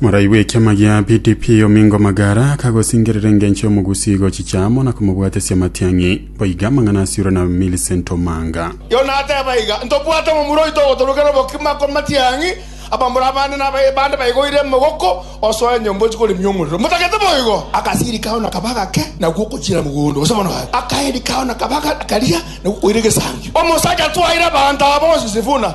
Morai bw'ekiama gia PDP Omingo Magara akagosingerera engencho y'omogusi gochicha amo na komobwatesia amatiang'i. Boiga amang'ana asiirwe na Millicent Omanga. Yona ateba iga, Ntobwate omomura oito ogotorokera obokima kw'amatiang'i, abamura abande na abaye bande baigoire emogoko osoa enyomba ochia koremia omorero. Motagete boigo! Agasirika ao nakaba agake, na gwokochira mogondo, gose bono gake. Akaerika ao nakaba agaria, na gwokoira egesangio. Omosacha twaire abanto aba onsi Sifuna.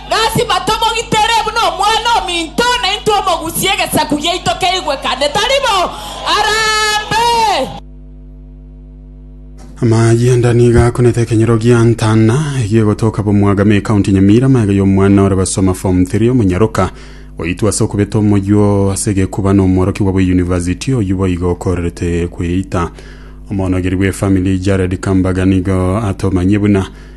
Lasima tomogitere buna omwana ominto, na intwe omogusie egesaku giaito keigwekane tari bo, arambe. Amayanda nigo akunete ekenyero gia Ntana egie gotoka Bomwagame ekaunti ya Nyamira amaiga y'omwana ore basoma form 3 omonyaroka oitwa ase okobeta omoywo ase egekuba na omworokigwa bwe university oyio boigo okorerete kweita. Omonogeri bwe family Jared Kambaga nigo atomanyie buna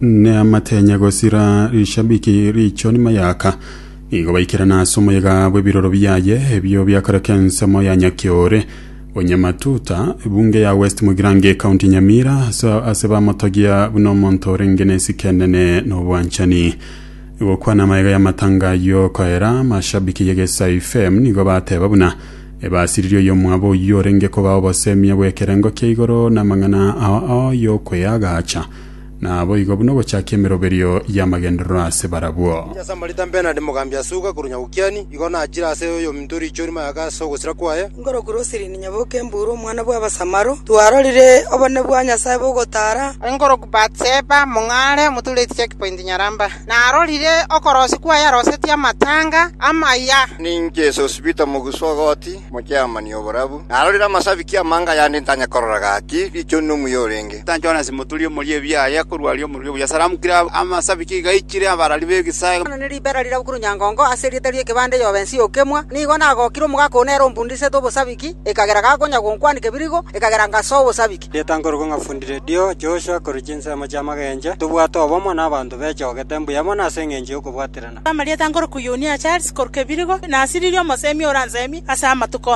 Neamatenya gosira rishabiki riicho nyuma yaka nigo baikerana ase omoyega bw'ebiroro biaye ebio biakoreka ensemo ya Nyakiore onye matuta ebunge ya West Mugirango ekaunti Nyamira ase ase bamotogia buna omonto orenge n'esike enene na obwanchani gokwana amayega y'amatanga ayio koera mashabiki y'egesaifm nigo bateba buna Ebasiriri oyomwabo oyio orenge kobao obosemiya bw'ekerengo kia igoro namang'ana ao ao y'okweagacha, naboigo buna ogochakia emeroberio y'amagenderero ase barabwo. Inche ase Amarita Bernard Mogambi Asuga korwa Nyagokiani, igo nachire ase oyominto oriichori mayaka ase ogosira kwaye, Ngoro Kurosirini Nyabokenburu omwana bw'Abasamaro, twarorire obonene bwa Nyasae bogotaara. Ngoro Batseba Mong'are omotureti Checkpoint Nyaramba. narorire okorosi kwaye arosetie amatanga amaya. Ninche esosibiti omoguswa o goti, omochiamani oborabu. Narorire amasabiki amange ayande ntanya korora gaki, richoni nomuya orenge. Jonasi moturi omoria ebiaye akorwa aria omoriri obuya, saramukire amasabiki iga aichire abarari b'egesae. Nari ribera riria bokire onyangongo ase erieta ri'ekebanda eyobe ense y'okemwa, nigo nagokire omogaka one ere ombundisetwe obosabiki, ekagera gakonya gonkwanika ebirigo, ekagera ngasoa obosabiki. Rieta nkorokwo ng'a fundi redio, Joshua, korwa chinsemo chi'amagencho, tobwate obomo nabanto bechogete mbuya mono ase engencho y'okobwaterana. Amarieta nkorokwo Yunia Charles, korwa Kebirigo, nasiririe omosemi oransemi ase amatuko onsi.